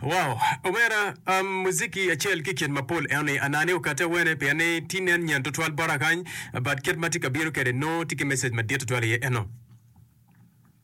Wow omera um, muziki acel ki kit mapol eno ni anani okate wene pien ni ti nen nyen tutwal bota kany but kit ma ti ka bino kede no ti ki message madit tutwal iye eno.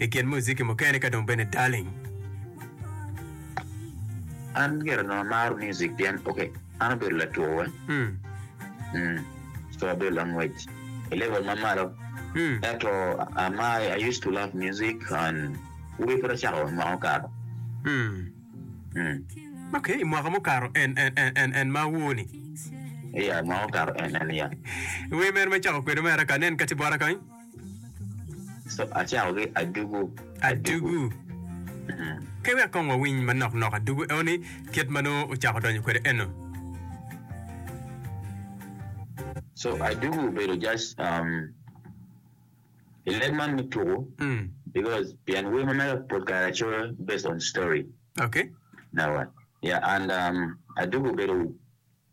i kin muziki mukene ka dong bene Darling. An gire onongo amaro music pien ok an obedo lature co abedo langwec i level ma malo ento amar I used to love music and wek pud acako i mwaka mukato. Ok i mwaka mukato en ma awor ni. Iya mwaka mukato en en iya. Wer mene ma icako kwede mere ka anen kati bota kany. So acakogi adugu adugu. Adugu. Wek kong wawiny manok nok adugu enoni kit ma nongo ocako donyo kwede eno. So adugu obedo just um, i leb man me tuku Mm. because pien wer ma mega pol kare acoyo based on story Okay. nawa yeah and um, adugu obedo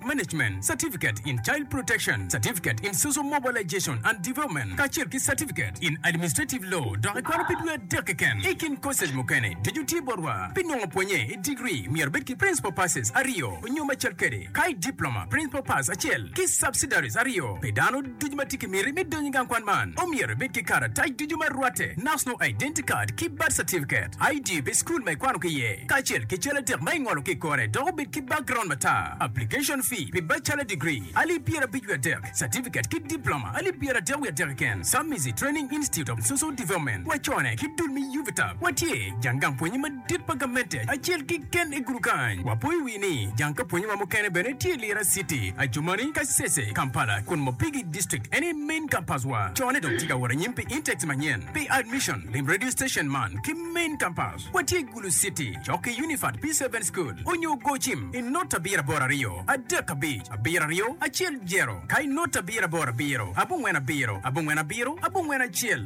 Management Certificate in Child Protection, Certificate in Social Mobilization and Development, kacel ki Certificate in Administrative Law, dok ikwano pi dwe adek keken. I kin koces mukene, ducu tye botwa. Pi nongo pwonye i degree, myero ibed ki Principal Passes aryo nyo macel kede, ka i Diploma, Principal Pass acel ki Subsidiaries aryo pi dano. Ducu ma tye ki miti me donyo i gang kwan man omyero ibed ki karatac ducu ma rwatte, National Identity Card ki Birth Certificate, ID pi cukul ma ikwano ki iye, kacel ki cal adek ma ingolo ki i kore dok obed ki background matar. Application fee pi bachelor degree, alip pyerabic wiye adek, certificate ki diploma, alip pyeradek wiye adek keken, Submizi Training Institute of Social Development, wacone ki dul me UVTAB, watye jang gang pwonye madit. Tit pa gamente acel kiken i gudu kany. Wapo i wi ni jang ka pwonye wa mukene bene tye i Lira city, Adjumani, Kasese, Kampala, kun Mopigi district eni main campus wa. Cone dong tye ka wot anyim pi intakes manyen. Pi admission, lim radio station man ki main campus. Watye i Gulu city, cok ki Unifat P seven school onyo gocim i not abiro aboro aryo adek abic abiro aryo acel jero ka i not abiro aboro abiro abongwen abiro abongwen abiro abongwen acel.